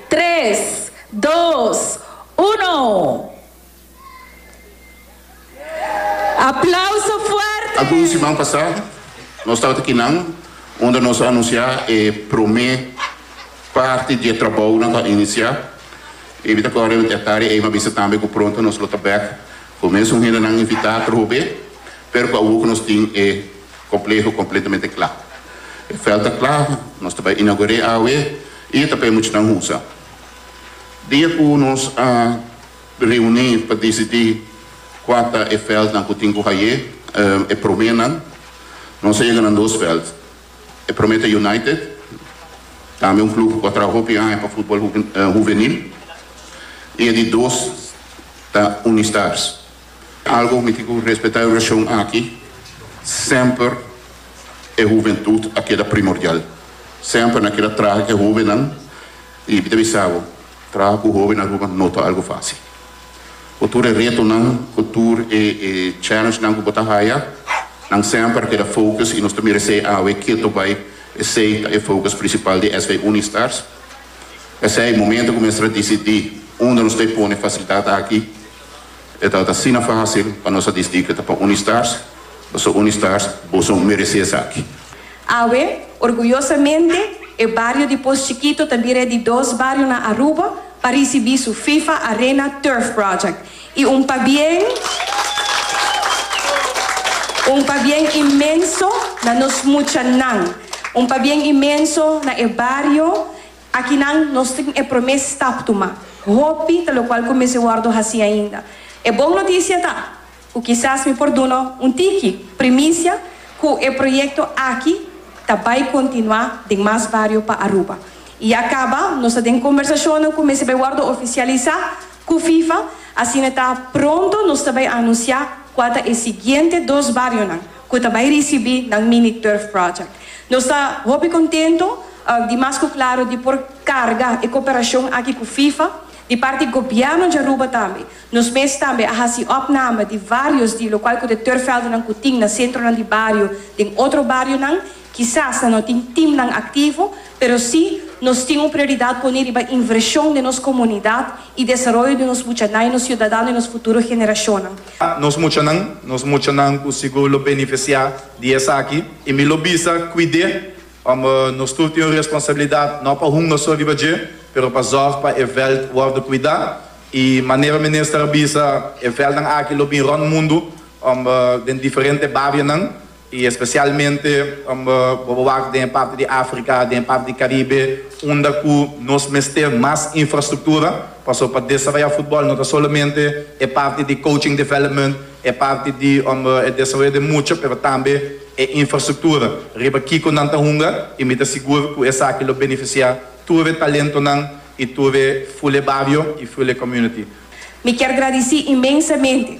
Tres, dos, uno! Aplauso fuerte! Algun siman pasá nos tabata kinan unda nos a anunsiá e promé parti di e trabounan ku a inisiá. E bita ku Rev. Ed Tari Eyma bisa tambe ku pronto nos lo ta bèk ku mesun hendenan invitá a tur hopi, pero ku awor ku nos tin e. Compleho completamente cla. E veld ta cla, nos ta bay inaugur'e awe y e ta pa e muchanan usa. Dia cu nos a reuni pa decidi cua ta e veldnan cu tin cu haye, e promenan, nos a yega na dos veld. E prome ta United, tambe un club cu a traha hopi aña pa futbol huvenil, y e di dos ta Unistars. Algo cu mi tin cu respeta e region aki, semper e huventud a keda primordial. Semper nan keda traha cu e hobennan y mi ta bisa bo, traha cu hoben na Aruba no ta algo facil. Cu tur e retonan, cu tur e challengenan cu bo ta haya, nan semper a keda focus y nos ta mira esey awe keto bay, esey ta e focus principal di SV Unistars. P'esey, momento cu mester a dicidi unda nos ta e pone facilidad aki, E ta ta asina fásil pa nos a disdí ku e ta pa Unistars, pasobra Unistars boso meresé esaki. Awe, orguyosamente, e bario di Pos Chikito ta bira e di dos bario na Aruba pa risibí su FIFA Arena Turf Project, i un pabien, un pabien inmenso na nos muchanan, un pabien inmenso na e bario. Akinan nos tin e promé stap tuma. Hopi ta lokual ku mester wòrdu hasí ainda. E bon notisia ta ku kisas mi por duna un tiki primisia ku e proyekto aki ta bai kontinuá den mas bario pa Aruba. I ya kaba nos ta den kombersashonnan ku mester bai wòrdu ofisialisá ku FIFA, asina ta pronto nos ta bai anunsiá kua ta e siguiente dos barionan. cu ta bay ricibi nan mini turf project. Nos ta hopi contento di mas cu claro di por carga e cooperacion aki cu FIFA. Di parti Gobierno di Aruba tambe, nos mes tambe a haci opname di varios di locual cu de turfveldennan cu tin na centronan di bario den otro barionan. Kisas nan no tin timnan aktivo, pero si nos tin un prioridat poné riba invershon den nos komunidat i desaroyo di nos muchanan i nos siudadano i nos futuro generashonnan. Nos muchanan, nos muchanan ku sigur lo benefisiá di esaki. I mi lo bisa kuid'é, ômber nos tur tin un responsabilidat no pa hunga so riba dje, pero pa zòrg pa e vèlt wòrdu kuidá. I manera Minister a bisa, e vèltnan aki lo bin rònt mundu, ômber den diferente barionan, y especialmente amba bo bo wak den e parti di Africa, den e parti di Caribe, unda cu nos mester mas infrastructura, paso pa desaroya futbol no ta solamente e parti di coaching development, e parti di amba e desaroyo den mucha, pero tambe e infrastructura riba kico nan ta hunga, y mi ta sigur cu esaki lo beneficia tur e talentonan y tur e Fule bario y Fule community. Mi kier gradici inmensamente